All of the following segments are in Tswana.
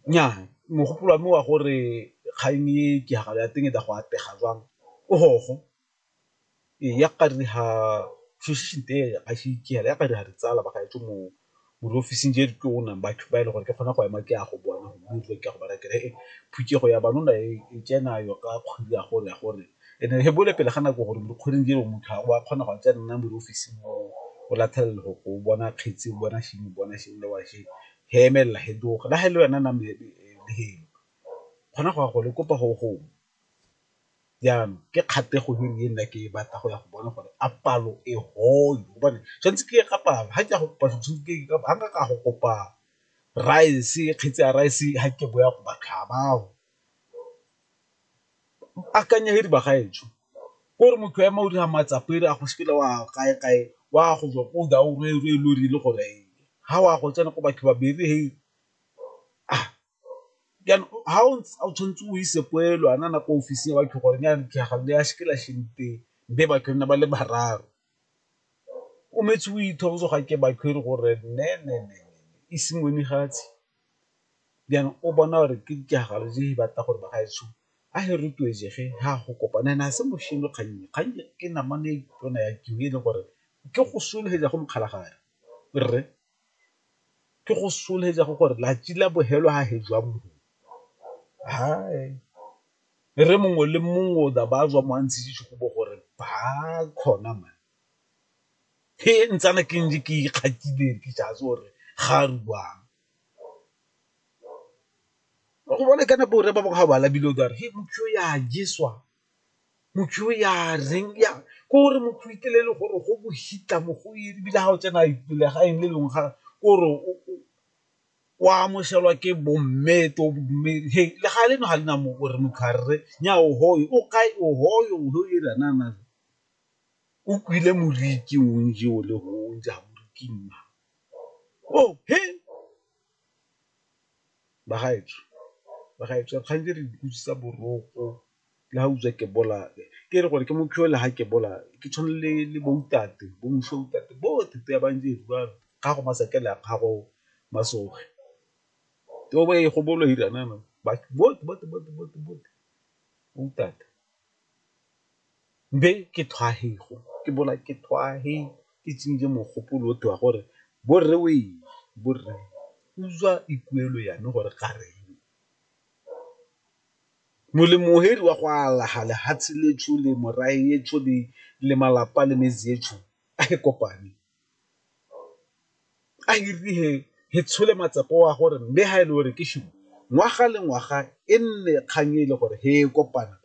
nnyaa mogopolo wa me wa gore kgang e ke tiragalo ya teng e tla go atlega jwang o gogo, ee ya ka re ha ya ka re ha ditsala ba gaetsho mo di ofising tse di tona ba e le gore ke kgona go ema ke ya go bona phuthego ya banna e tsena yo ka kgwedi ya gore ya gore and-e re bone pele ga nako gore mo dikgweding tseo motho ga o a kgona go a tsena mo diofising o latlhelela go bona kgetse, o bona sengwe, o bona sengwe le wa . he emelela he tloga la he le wena name helo gona go ya gole kopa go gongwe, jaanong ke kgatlhego e nna ke e batla go ya go bona gore a palo e gone gobane tshwanetse ke ye ka palo ga ke ya go kopa ga nka ka go kopa rice kgetsi ya rice ga ke boya go ba tlhaba. akanya he di bagaetsho gore motho ema o dira matsapa e re a go sekele wa kae kae wa go jwa ko da o re re lo rile gore ha wa go tsena ko batho ba bere he ah jang ha o ntse o tshwanetse o ise poelo a nana ko ofising ya batho gore ne yana ke gale ya sekela shente be batho nna ba le bararo. O metse o ithokoze ga ke batho e re gore ne ne ne e seng o ne ga tse. then o bona gore ke ditiragalo tse di batla gore ba gaetsho a e rotloetse ge ha go kopana and a se bosenyi kgang e, kgang e ke namane e tona ya e le gore ke go solofetsa go mokgalagadi rre ke go solofetsa go gore latsi la bofelo ha he jwa mongwe rre mongwe le mongwe o tla ba tswa mo a ntsheditse go bo gore ba kgona man. he ntsana ke ntse ke ikgatile ke sa itse gore ga a robang, wa go bona ka nako eo rre ba bangwe ga ba labile o tla re he motho yo ya jeswa, motho yo ya reng ya ke gore motho o iteile e le gore go bohitla mo go eng ebile ga o tsena pele ga eng le le ke gore o amogelwa ke bo mme to bo mme he le ga le no ga le na mo gore motho a rre nyaa o hoye o kae o hoye o lo ira . O kwile moriti o nje o le go o nja moriti nna. O he! Bagaetsho, bagaetsho kgang je re utlwisisa boroko le ga utswa ke bolawe. Ke re gore ke mo le ga ke bolawe ke tshwana le le bo ntate bo moswi wa ntate bote te ba nje ba gago masakela ya gago masoge bo ntate. be ke thwahego ke bola ke thwahe ke tsenye mogopolo o tewa gore borre o eng borre utswa ikuelo yame gore ga re eng molemo heri wa go alaga lehatshe le tshole morae e tshole le malapa le metse e tshole a ke kopane. a e re he tshole matsepo wa gore mme ha e le gore ke shimo ngwaga le ngwaga e nne kgang e le gore he e kopana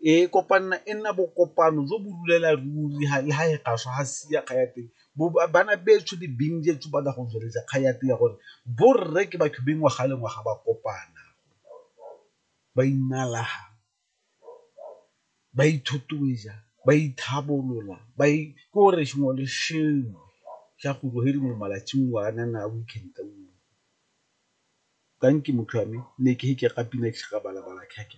e kopanna e nna bokopano jo bo rulela ruri le ha e gaswa ha sia kga ya teng bana betsho di bing jetso ba go tsweletsa kga ya teng ya gore borre ke batho beng ngwaga le ngwaga ba kopana ba inalaha ba ithotloetsa, ba itlhabolola ba k'ore sengwe le sengwe sa go bo e le mo malatsing o a nang a weekend o tanki motho wa me ne ke ke ga pina ke sa ka bala bala ke ke .